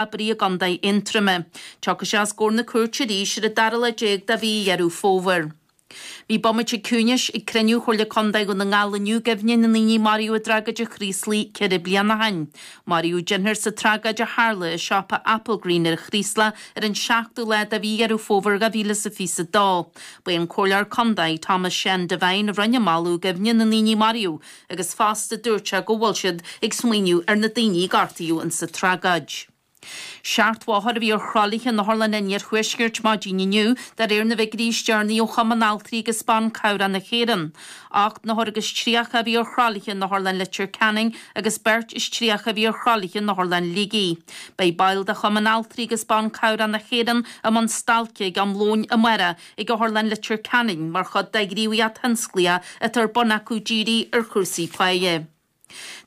oibrí i gContae Aontroime. Tiocfaidh sé os comhair na cúirte arís ar an dara lá déag de mhí Dheireadh Fómhair. Bhí bomaite ciúnais ag cruinniú Chomhairle Contae Dhún na nGall inniu i gcuimhne na ndaoine a maraíodh i dtragóid an Chraoslaigh ceithre bliana ó shin. Maraíodh deichniúr sa tragóid a tharla i siopa Applegreen ar an Chraoslach ar an seachtú lá de mhí Dheireadh Fómhair dhá mhíle is a fiche is a dó. Ba é an Comhairleoir Contae, Tomás Seán Devine a rinne an moladh i gcuimhne na ndaoine a maraíodh. agus fosta dúirt sé go bhfuil siad ag smaoineamh ar na daoine a gortaíodh in sa tragóid. Seachtó othar a bhí ar thralaithe in otharlanna an Iarthuaiscirt maidin inniu de réir na bhfigiuirí is deireanaí ó Chumann Altraí agus Ban Cabhrach na hÉireann. Ocht n-othar agus tríocha a bhí ar thralaithe in Otharlann Leitir Ceanainn agus beirt is tríocha a bhí ar thralaithe in Otharlann Shligigh. Beidh baill de Chumann Altraí agus Ban Cabhrach na hÉireann i mbun stailce ag am lóin amárach ag Otharlann Leitir Ceanainn mar chuid de ghníomhaíocht thionsclaíoch atá ar bun acu dírithe ar chúrsaí páighe.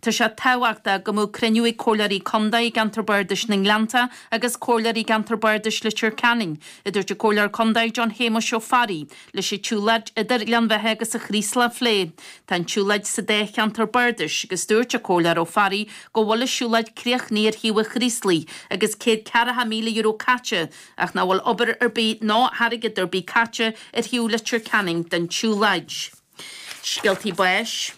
Tá sé tábhachtach go mbeadh cruinniú ag Comhairleoirí Contae i gceantar Bardais na nGleannta agus Comhairleoirí i gceantar Bardais Leitir Ceanainn, a dúirt an Comhairleoir Contae John Shéamuis Ó Fearraigh, leis an tsiúlóid idir Gleann Bheithe agus An Chraoslach a phlé. Tá an tsiúlóid sa dá cheantar bardais agus dúirt an Comhairleoir Ó Fearraigh go bhfuil an siúlóid críochnaithe ar thaobh an Chraoslaigh agus céad ceathracha míle euro caite Ach nach bhfuil obair ar bith ná airgead ar bith caite ar thaobh Leitir Ceanainn den tsiúlóid. Scéaltaí báis.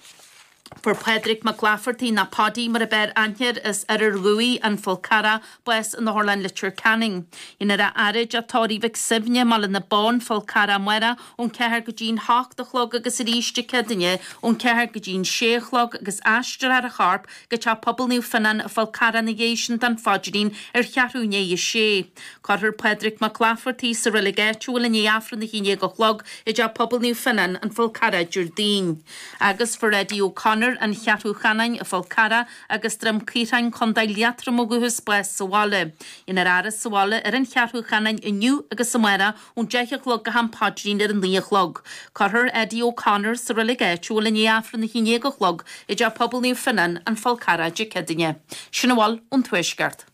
Fuair Pádraig Mac Laifeartaigh, nó Paudie mar ab fhearr aithne air, as Oirear Dhumhaí, An Fál Carrach, bás in Otharlann Leitir Ceanainn. Dhéanfar é a fhaire i dTeach Tórraimh Mhic Suibhne, Baile na Bó, An Fál Carrach, amárach, ón ceathair go dtí'n h-ocht a chlog agus arís Dé Céadaoine ón ceathair go dtí'n sé a chlog agus aistreofar a chorp go Teach Pobail Naomh Fionán, An Fál Carrach ina dhiaidh sin don Phaidrín ar cheathrú i ndiaidh a 6. Cuirfear Pádraig Mac Laifeartaigh sa reilig áitiúil i ndiaidh Aifreann a hAon Dhéag a chlog i dteach Pobail Naomh Fionán, An Fál Carrach, Déardaoin. Agus fuair Eddie O'Connor, An Cheathrú Cheanainn, An Fál Carrach agus Droim Caorthainn, Co Liatroma ó thús bás sa bhaile. Dhéanfar é a fhaire sa bhaile ar an Cheathrú Cheanainn inniu agus amárach ón deich a chlog go ham paidrín ar a naoi a chlog. Cuirfear Eddie O'Connor sa reilig áitiúil i ndiaidh Aifreann a haon dhéag a chlog i dTeach Pobail Naomh Fionán, An Fál Carrach, Dé Céadaoine. Sin a bhfuil ón Tuaisceart.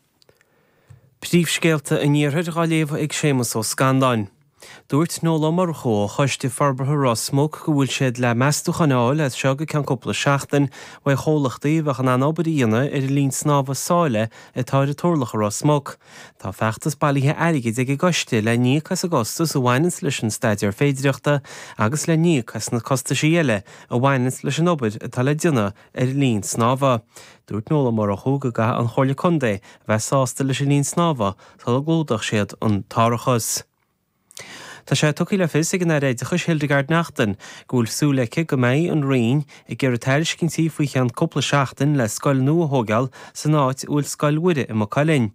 Príomhscéalta an Iarthair dhá léamh ag Séamas Ó Scanláin. Dúirt Noel Ó Murchú ó Choiste Forbartha Ros Muc go bhfuil siad le meastúcháin a fháil as seo go ceann cúpla seachtain uaidh chomhlachtaí a bheadh in ann an obair a dhéanamh ar an linn snámha sáile atá ar an Turlach i Ros Muc. Tá feachtas bailithe airgid ag an gcoiste le n-íoc as an gcostas a bhaineanns leis an staidéar féidireachta agus le n-íoc as na costaisí eile a bhaineanns leis an obair atá le déanamh ar an linn snámha. Dúirt Noel Ó Murchú go gcaithfidh an Chomhairle Contae a bheith sásta leis an linn snámha sula gclúdódh siad an t-árachas. Tá sé tugtha le fios ag an Aire Oideachais Hildegarde Naughton go bhfuil súil aici go mbeidh an Roinn ag iarraidh tairiscintí faoi cheann cúpla seachtain le scoil nua a thógáil san áit a bhfuil Scoil Mhuire i Maigh Cuilinn.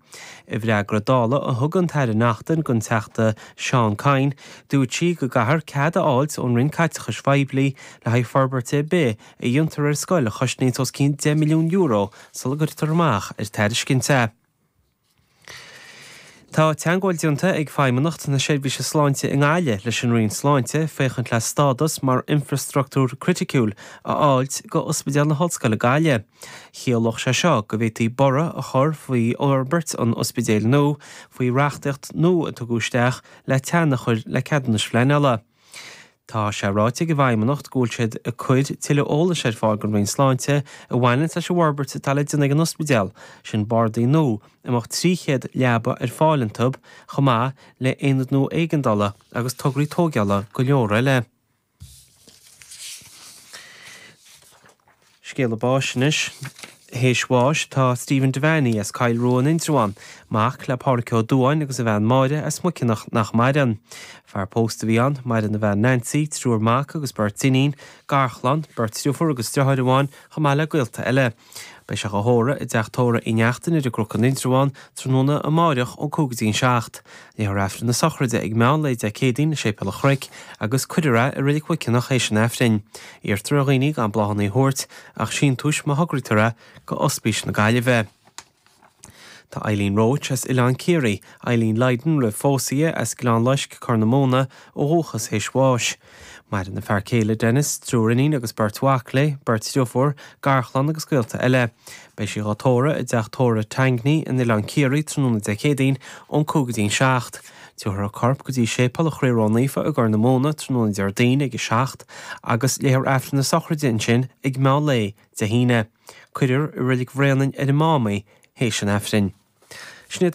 I bhfreagra Dála a thug an tAire Naughton don Teachta Seán Kyne, dúirt sí go gcaithear cead a fháilt ón Roinn Caiteachais Phoiblí le haghaidh forbairt ar bith a dhéantar ar scoil a chosnaíonns os cionn €10 milliún sula gcuirtear amach ar tairiscint é. Tá teangmháil déanta ag Feidhmeannacht na Seirbhíse Sláinte i nGaillimh leis an Roinn Sláinte féachaint le stádas mar infreastruchtúr criticiúil a fháilt go Ospidéal na hOllscoile Gaillimhe. Chiallódh sé seo go bhféadfaí borradh a chur faoi fhorbairt an ospidéil nua faoi reachtaíocht nua a tugadh isteach le teannadh a chur le ceadúnais phleanála. Tá sé ráite ag an bhFeidhmeannacht go bhfuil siad ag cuir tuilleadh eolais ar fáil don Roinn Sláinte a bhaineanns leis an bhforbairt atá le déanamh ag an ospidéal sin, bardaí nua a mbeadh 300 leaba ar fáil iontu, chomh maith le aonad nua éigeandála agus tograí tóigeála go leor eile. Scéala básanna anois. Théis bháis, tá Stephen Devaney as Coill Rua in Indreabhán, mac le Pádraic Ó Dubháin agus a bhean Máire as Muiceanach nach maireann. Fear post a bhí ann, maireann a bhean Nancy, triúr mac agus beirt iníon, garchlann, beirt dhriofúr agus driotháir amháin chomh maith le gaolta eile. Beidh sé dhá thórramh i dteach tórraimh Uí Neachtain ar an gCnoc in Indreabhán tráthnóna amáireach ón cúig go dtí an seacht. Léifear Aifreann na Sochraide ag meán lae Dé Céadaoin i Séipéal an Chnoic agus cuirfear é i Reilig Mhuiceanach théis an Aifrinn. Iarrtar ar dhaoine gan bláthanna a thabhairt ach síntiúis má thograítear é go Ospís na Gaillimhe. Tá Eileen Roche as Oileán Ciarraí, Eileen Lydon roimh phósadh di as Gleann Loisc, Corr na Móna, ó dhúchas théis bháis. Maireann a fear céile Denis, triúr iníon agus beirt mhac léi, beirt dhriofúr, garchlann agus gaolta eile. Beidh sí dhá tórramh i dteach tórraimh Tangney in Oileán Ciarraí tráthnóna Dé Céadaoin ón 5 go dtí an 7. Tabharfar a corp go dtí Séipéal an Chroí Ró-Naofa i gCorr na Móna tráthnóna Déardaoin ag 7 agus léifear Aifreann na Sochraide ansin ag meán lae Dé hAoine. Cuirfear i Reilig Bhraonáin ar an Mám í théis an Aifrinn. Sin iad.